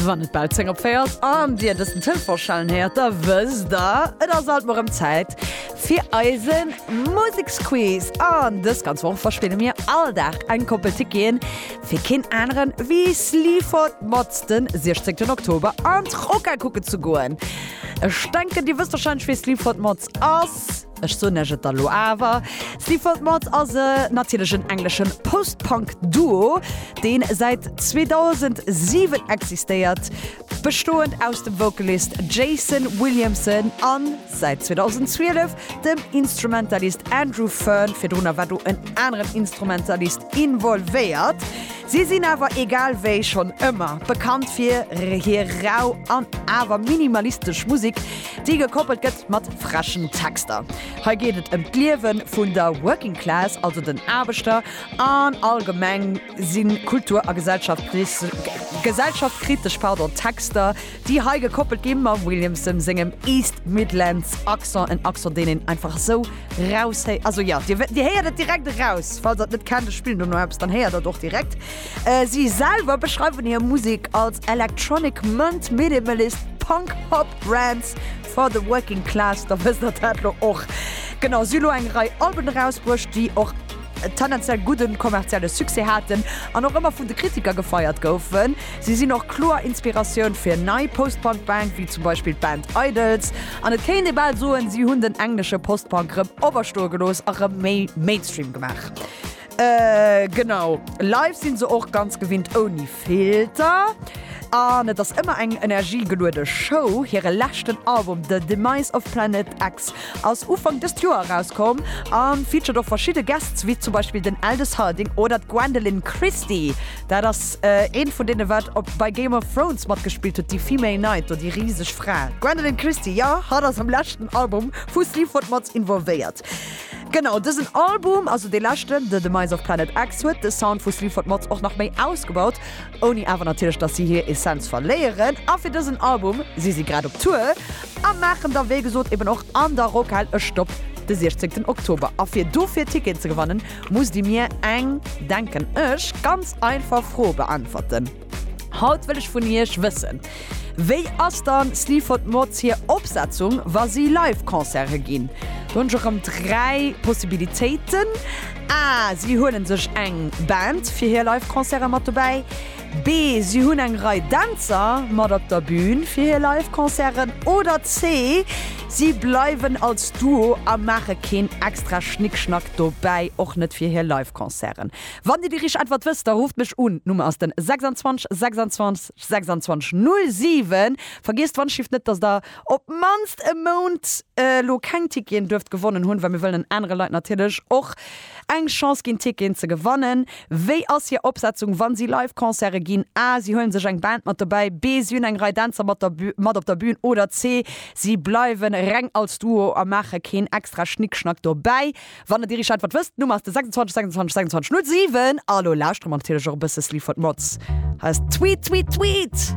Wann et bal 10 op 4 ass an Dir dësen Telefon schellen héiert, da wësst Der, et ass alt mol rëm Zäit fir eise Museksquiz. An dës ganz Woch verspille mir all Dag eng Koppel Ticketen fir keen aneren ewéi Sleaford Mods den 16 Oktober an d'Rocca kucken ze goen. Ech denken, Dir wësst warscheinlech, wee Sleaford Mods ass. Ech soen iech et da lo awer, Sleaford Mods ass e natierlechen engleschen Post-Punk Duo, deen säit 2007 existéiert, bestoend aus dem Vocalist Jason Williamson an, säit 2012, dem Instrumentalist Andrew Fearn, virdrunner war do en aneren Instrumentalist involvéiert. Si sinn awer egal wéi schonn ëmmer bekannt fir hir rau an awer minimalistesch Musek, Déi gekoppelt gëtt mat freschen Texter. Hei geet et ëm d'Liewe vun der Working Class, also den Aarbechter, an allgemeng si kultur a gesellschaftkritesch Texter, déi hei gekoppelt gi mam Williamson sengem East Midlands Accent, en Accent, deen een einfach esou raushéiert. Also jo, Dir héiert et direkt eraus. Falls Der et net kennt, ech spillen dono eppes, dann héiert Der et och direkt. Si selwer beschreiwen hir Musek als Electronic Munt, Minimalist, Punk, Pop, Rants for the Working Class. Da wësst der dat lo och. Genau, si hu lo eng Rei Alben erausbruecht, déi och tendenziell gudden kommerzielle Succès haten an och ëmmer vun de Kritiker gefeiert goufen. Si sinn och kloer Inspiratioun fir nei Post-Punk-Bank wéi zum Beispill d'Band Idles. An et kéint ee bal soen, si hunn den englesche Post-Punk rëm owerstoe gelooss a rëm méi Mainstream gemaach. Genau, live sinn se och ganz gewinnt ouni Filter an et ass ëmmer eng energiegeluede Show. Hire leschten Album The Demise of Planet X ass Ufank dëst Joer erauskomm a featured och verschidde Guests, wéi zum Beispill den Aldous Harding oder d'Gwendoline Christie. Dat ass ee vun deene wat op bei Game of Thrones matgespillt huet, déi Female Knight do, déi riseg Fra. D'Gwendoline Christie, jo, hatt ass am leschten Album vu Sleaford mat involvéiert. Genau dësen Album, also dee leschten, The Demise of Planet X, huet de Sound vu Sleaford Mods och nach méi ausgebaut, ouni awer natierlech dass si hir Essenz verléieren. A fir dësen Album si si grad op Tour a maachen da wéi gesot eben och an der Rockhal e Stopp de siechzéngten Oktober. A fir dofir Ticketen ze gewannen, musst Dir mir eng, denken ech, ganz einfach Fro beäntwerten. Haut wëll ech vun Iech wëssen, Wéi ass dann Sleaford Mods hir Opsetzung wa si live Concerte ginn? Do hunn ech erëm 3 Possibilitéiten, A, Si huelen sech eng Band fir hir live Concerte mat dobäi, B, Si hunn eng Rei Dänzer mat op der Bün fir hir live Concerten, oder C, Si bleiwen als Duo a maache keen extra Schnickschnack dobäi, och net fir hir live Concerten. Wann Dir de Richettwert wësst, da rufft mech un. D'Nummer ass den 26 26 26 07. Vergiesst d'Wandschifft net, dass Der op d'mannst e Mount elo keng Ticketen duerft gewonnen hunn, well mir wëllen den anere Leit natierlech och eng Chance ginn, Ticketen ze gewannen. Wéi ass hir Opsetzung, wann si live Concerte ginn? A, Si huelen sech eng Band mat dobäi. B, Si hunn eng Rei Dänzer mat der mat op der Bün. Oder C, Si bleiwen reng als Duo a maache keen extra Schnickschnack dobäi. Wann der Dirigeant wat wësst, d'Nummer ass de 26 26 26 07. A lo lauschtere mer natierlech och e bësse Sleaford Mods. Hei ass Tweet Tweet Tweet!